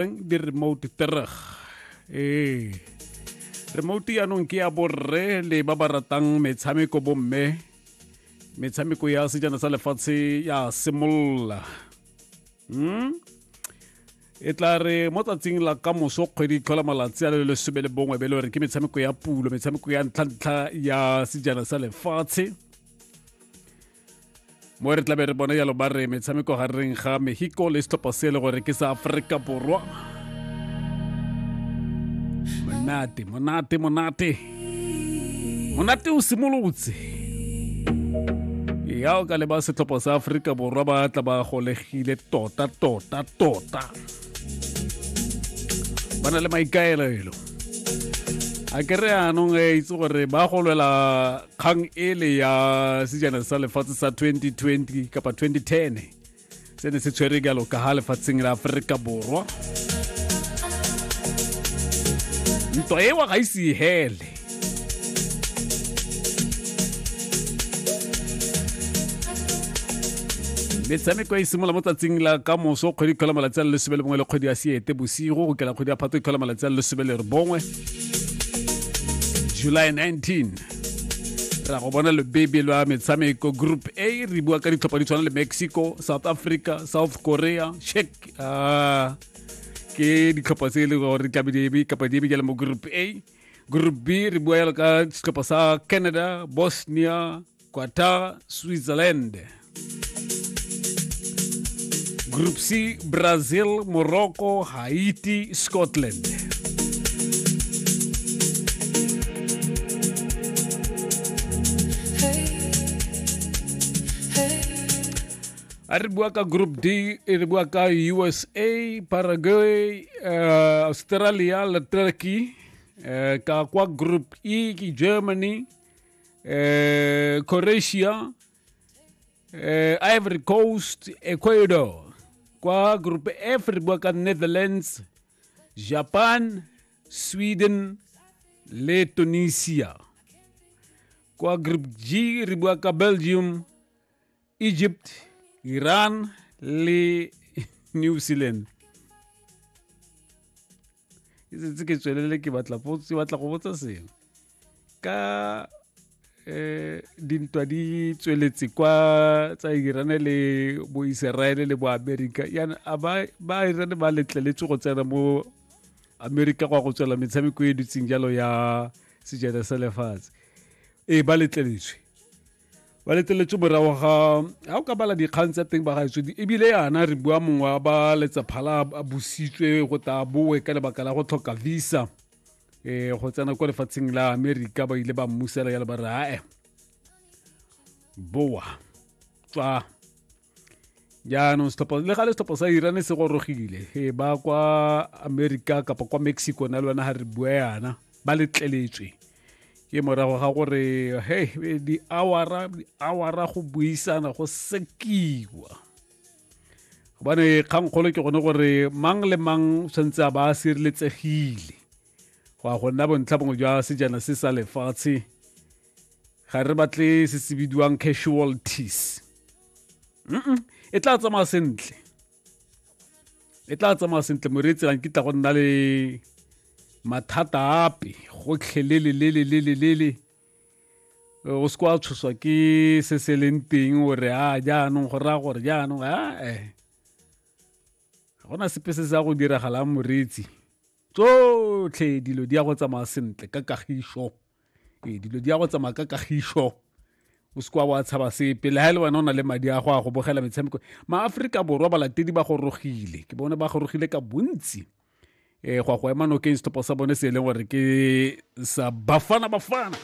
eng di remote tereg ee remote yaanong ke ya borre le ba ba ratang metshameko bomme metshameko ya sejana sa lefatshe ya simolola hmm? e tla re mo tsatsing la ka moso kgwedi tlhola malatsi a le lesome le bongwe be le gore ke metshameko ya pulo metshameko ya ntlhantlha ya sejana sa lefatshe mo re tlabe re bone yalo ba re metshameko gareng ga mexico le setlhopha se e le gore ke sa aforika borwa monate monate monate monate o simolotse ya o ka leba setlhopha sa aforika borwa ba tla ba golegile tota tota tota ba na le maikaelelo a ke re anong e itse gore ba golwela kgang ele ya sejana sa lefatshe sa 2020 kapa 2010 se ne se tshwere jalo ka ga lefatsheng la aforika borwa ntwa ewa ga ise e hele metshameko e simolola mo tsatsing la ka moso kgwedi kgwela malatsi a le lesome le bongwe le kgwedi ya seete bosigo go kela kgwedi ya phato e kgwela malatsi a le lesome le re bongwe july 19 ra go bona lebebe lwa metshameko group a re bua ka ditlhopha di tshwana le mexico south africa south korea check uh, ke ditlhopha tse e leng gore tlabe di kapa di bikele mo group a group b re bua yalo ka setlhopha sa canada bosnia Qatar, Switzerland. Group C, Brazil, Morocco, Haiti, Scotland. a re bua ka group d e re bua ka usa paraguay uh, australia le turkey uh, ka kwa group e ke germany eh, Croatia, eh, Ivory Coast, Ecuador. Kwa groupe F re bua ka Netherlands, Japan, Sweden le Tunisia. Kwa group G re bua ka Belgium, Egypt, Iran le New Zealand. E setse ke tswelele ke batla potso batla go botsa seng ka eh dintwa di tsweletse kwa tsa Iran le bo Israel le bo America yana a ba ba Iran ba letleletse go tsena mo America go ya go tswela metshameko e dutseng jalo ya sejana sa lefatshe e ba letleletswe ba leteletse morago ga ga o ka bala dikgang tsa teng ba gaetswe ebile yana re bua mongwe wa ba letsaphala a bositswe go ta boe ka lebaka la go tlhoka visa um go tsena kwa lefatsheng la amerika ba ile ba mmusela ya le ba re ae boa tswa jaanong setlhopha le ga le setlhopha sa iran se gorogile e ba kwa america kapa kwa mexico na le wena ga re bua yana ba letleletswe ke morago ga gore he di-awara di-awara go buisana go sekiwa gobane kgangkgolo ke gone gore mang le mang tshwanetse a ba a sireletsegile go ya go nna bontlha bongwe jwa sejana se sa lefatshe ga re batle se se bidiwang casualties e tla tsamaya sentle e tla tsamaya sentle moreetsi lang ke tla go nna le mathata ape gotlhe lelelelelelelele o se kwa tshoswa ke se se leng teng o re a jaanong go raya gore jaanong ae ga gona sepe se se ya go diragalang moreetsi tsotlhe dilo di ya go tsamaya sentle ka kagišo ee dilo di ya go tsamaya ka kagišo o se kwa wa tshaba sepe le ga e le wena o na le madi a go a go bogela metshameko maaforika borwa balatedi ba gorogile ke bone ba gorogile ka bontsi um go a go ema nokeng setlhopha sa bone se e leng gore ke sa bafana bafana